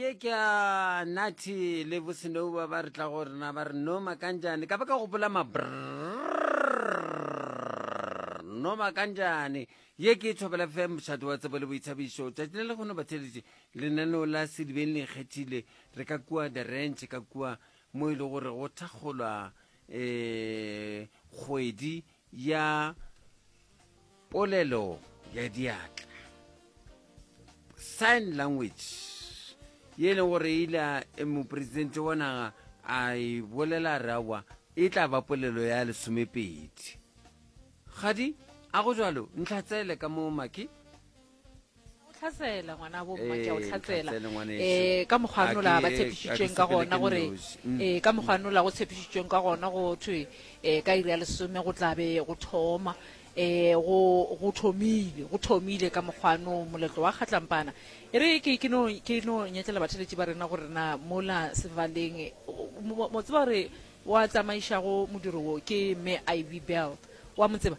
ye ke a nathi le bosenouba ba re tla go rena ba re no makanjane ka ba ka gopola mabr no makanjane ye ke e thobela fe mošato wa tsebo le boithabišo tšatši le le kgono batheletše lenaneo la sedibeng le ikgethile re ka kua the ranch ka kua mo e le gore go thakgolwa um kgwedi ya polelo ya diatla sign language ye e leng gore ile e mopresidente wa naga a e bolela rawa e tla ba polelo ya lesomepedi gadi a go jalo ntlhatsele ka mo maki tlhasela ngwana bo mma ke a o Ee, tlhatsela tlhatsele ngwaneso. eh ka mokgwa A nola ke- ba a ke tshepišitšweng ka sepele gona ke gore nosi. Mm. eh ka mokgwa nola go tshepišitšweng ka gona go thwe eh ka iri ya lesome go tlabe go thoma eh go go thomile go thomile ka mokgwano moletlo wa kgatlampana e re ke ke no ke no nyetlela batheletši ba rena gore na mola sevaleng eh, o- mo mo tseba gore wa tsamaišago modiro wo ke me ivy belt wa mo tseba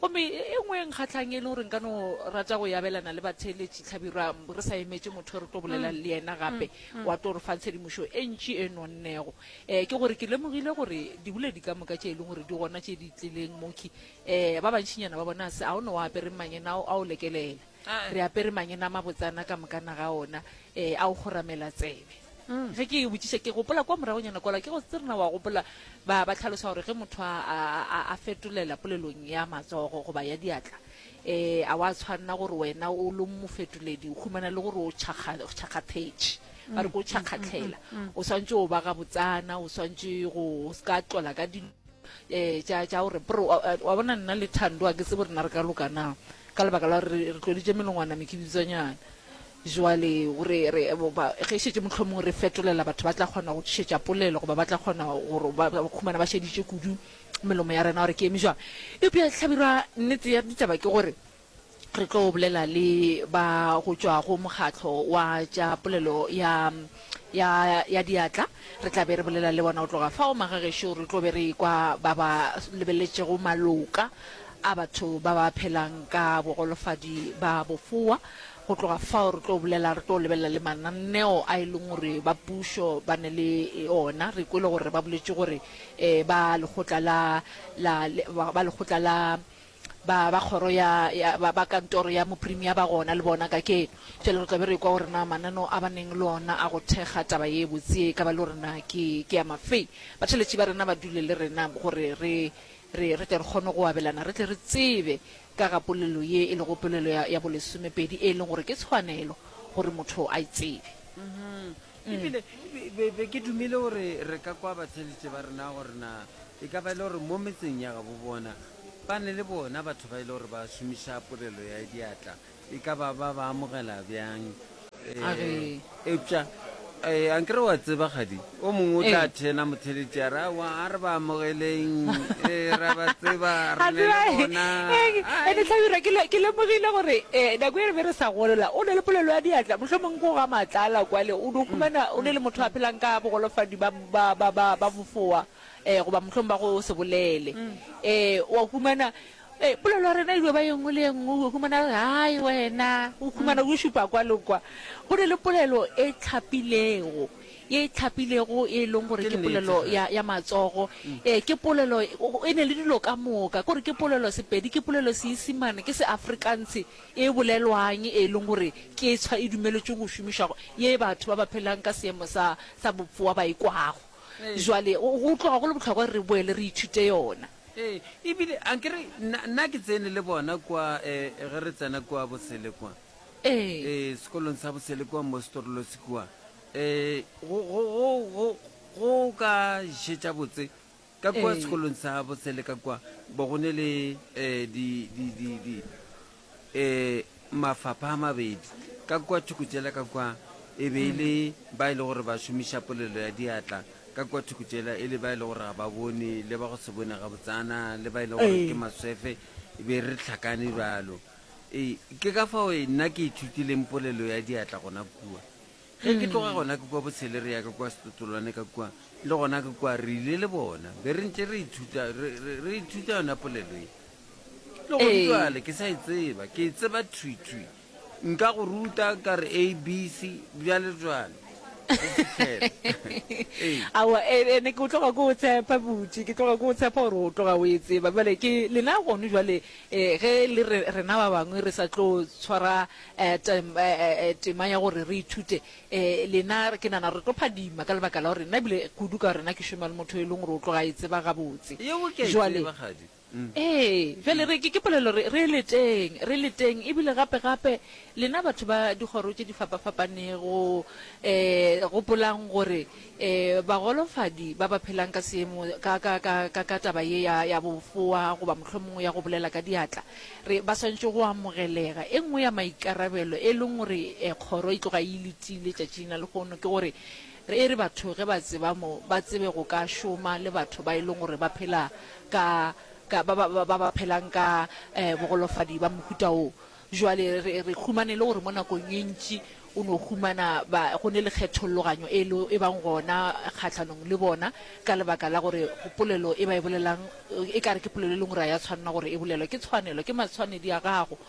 Gomme e nngwe e nkgahlang e le gore nka no rata go e abelana le batheeletši, Hlabirwa, re sa emetše motho e re tlo bolelang le yena gape, wa tlo re fa tshedimošo e ntši e nonnego, um ke gore ke lemogile gore diboledi ka moka tše e leng gore di gona tše di tlileng mokhwi, um ba bantšinyana ba bona se a o ne o apere mmanyena ao a o lekelela. Re apere mangena a mabotsana ka mokana ga ona um a o kgoramela tsebe. ge ke e botšiša ke gopola kwa moragonyana kwala ke go tsirena wa gopola ba ba tlhalosa gore ge motho a- a a- a fetolela polelong ya matsogo goba ya diatla um a wa tshwanela gore wena o lo mofetoledi o humana le gore o tšhakga- o tšhakgathetše ba re ko o tšhakgatlhela o swantse o ba gabotsana o swantse go o se ka tlola ka dilo ee, tša, tša gore, brr, wa, wa bona nna le Thando a ke tsebo rena re ka loka na, ka lebaka la gore re tloditše melongwana mekibitswanyana. Jwale o re, re, ba, ge šetše mohlomong re fetolela batho ba tla kgona go tšhetša polelo, goba ba tla kgona gore ba, ba khumana ba šeditše kudu melomo ya rena gore ke eme jwang. Eupša Hlabirwa, nnete ya ditaba ke gore, Re tlo bolela le ba go tšwa go mokgatlo wa tša polelo ya, ya, ya diatla. Re tla be re bolela le bona go tloga fao. Magagešo re tlo be re ekwa ba ba lebeletšego maloka a batho ba ba phelang ka bogolofadi ba bofoa. Go tloga fao re tlo bolela, re tlo lebelela le mananeo a e leng gore ba pušo ba ne le ona. Re kwele gore ba boletše gore um ba lekgotla la, la, ba lekgotla la, ba, ba kgoro ya, ya ba, ba kantoro ya moprimia ba gona le bona ka keno. Bjale re tla be re kwa gore na mananeo a ba neng le ona a go thekga taba ye botse ye e ka ba le gore na ke, ke a mafe. Batheletši ba rena ba dule le rena gore re, re, re tle re kgone go abelana, re tle re tsebe ka ga polelo ye e lego polelo ya, ya bolesomepedi, e leng gore ke tshwanelo gore motho a e tsebe. E bile be, be, be ke dumile gore re ka kwa batheletši ba rena gore na e ka ba e le gore mo metseng ya gabo bona Ba ne le bona batho ba e le gore ba šomiša polelo ya diatla, e ka ba ba ba amogela bjang? A re. Eupša eh, a nkere wa tseba kgadi, o mongwe o tla Ee. thena motheletši a re, aowa, a re ba amogeleng, eh, ra ba tseba, re Ga ne tseba, le eh, bona. eh, Ai. ene Hlabirwa, ke le- ke lemogile gore eh, nako e re be re sa golela o ne le polelo ya diatla mohlomongwe ko ga matlala kwale o ne o humana o ne le motho a phelang ka bogolofadi ba, ba, ba, ba, ba bofoa um goba mohlong ba go se bolele um wa humana um polelo ya rena e dio ba ye nngwe le ye nngwe o humana re hai wena o humana o šupa kwa le kwa go ne le polelo e tlhapilego ye e tlhapilego e leng gore ke polelo ya, ya matsogo um ke polelo e ne le dilo ka moka kore ke polelo sepedi ke polelo seisimane ke seafrikanse e bolelwang e leng gore ke tshwa e dumeletšwe go šomišwago ye batho ba ba phelang ka seemo sa sa bopfoa ba e kwago Jwale go go tloga go le bohlokwa gore re boele re ithute yona. Ee, e bile a ke re nna, nna ke tsene le bona kwa, eh, ge re tsena kwa Bosele kwa, Ee. eh, sekolong sa Bosele kwa Mostorlosi kwa, eh, go, go, go, go, go ka šetša botse ka kua Ee. sekolong sa Bosele ka kwa, bo go ne le, eh, di, di, di, di, e mafapha a mabedi ka kua thoko tšela ka kua e be e le ba e le gore ba šomiša polelo ya diatla ka kua thoko tšela e le ba e le gore ga ba bone le ba go se bone ga botsana le ba e le gore ke maswefe e be re tlhakane bjalo ee ke ka fao e, nna ke ithutileng polelo ya diatla gona kua ge ke tloga gona ke kua botshele re ya ka kua setotolwane ka kua le gona ke kua re ile le bona be re ntse re ithuta re ithuta yona polelo e Le gona Ee. jwale ke sa e tseba, ke e tseba thwi-thwi. Nka go ruta ka re ABC, bjale jwale. Go fihlela. Ee. Aowa, e, e, ne ke o tloga ke o tshepa butši, ke tloga ke o tshepa gore o tloga o e tseba. Bjale ke lena gono jwale, eh, ge e le re, rena ba bangwe re sa tlo tshwara eh, tem, eh, eh, eh, tema ya gore re ithute, eh, lena re- ke nana re tlo phadima ka lebaka la gore nna ebile kudu ka gore nna ke šoma le motho e leng gore o tloga a e tseba gabotse. Yeo ke a e Jwale, tseba, kgadi. Ee, bjale re, ke, ke polelo, re, re leteng, re leteng, e bile gape, gape, lena batho ba dikgoro tše di fapafapanego, ee, gopolang gore, ee, bagolofadi ba ba phelang ka seemo, ka, ka, ka, ka, ka taba ye ya, ya bofoa, goba mohlomongwe ya go bolela ka diatla, re, ba swanetše go amogelega. E nngwe ya maikarabelo, e leng gore, ee, kgoro e tloga e e letile tšatšing la lehono, ke gore, Re e re batho ge ba tseba mo, ba tsebe go ka šoma le batho ba e leng gore ba phela ka, ka, ba, ba, ba, ba, ba phelang ka eh, bogolofadi ba mohuta wo. Bjale re, re humana e le gore mo nakong e ntši o no humana ba, go ne le kgetholloganyo e lo e bang gona kgahlanong le bona, ka lebaka la gore polelo e ba e bolelang e ka re ke polelo e leng gore ga ya tshwanela gore e bolelwe. Ke tshwanelo, ke matshwanedi a gago.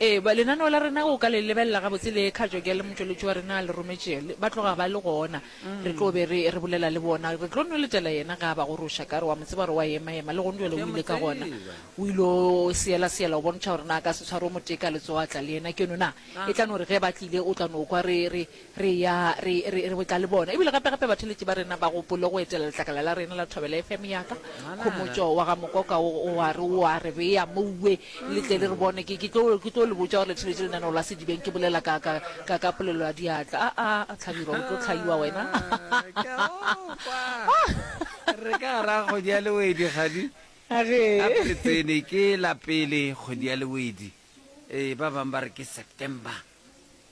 Ee, ba, lenaneo la rena o ka le lebelela gabotse le kgatšwa ke le motšweletši wa rena a le rometše, le, ba tloga ba le gona. Re tlo be re, re bolela le bona. Re tlo nweletela yena ge a ba goroša. Ka re, Wa mo tseba gore o a ema-ema, le gong bjale o ile ka gona. O ile o seela-seela go bontšha gore na a ka se tshware o motee ka letsogo a tla le yena keno na. E tla no re ge ba tlile o tla no kwa re, re, Re eya re, re, re botla le bona. Ebile gape, gape batheeletši ba rena ba gopole go etela letlakala la rena la Thobela FM ya ka. Khomotšo wa ga Mokoka o, o a re, o a re bea mouwe le tle le re bone. Ke, ke tlo, ke tlo le botša gore le theeletše lenaneo la Sedibeng ke bolela ka, ka, ka, ka polelo ya diatla. A, a, Hlabirwa, o tlo hlaiwa wena. Ke a go kwa. Re ka gar'a kgodi ya Lewedi, kgadi. A re. Gape re tsene, ke la pele kgodi ya Lewedi. Ee, ba bang ba re ke September.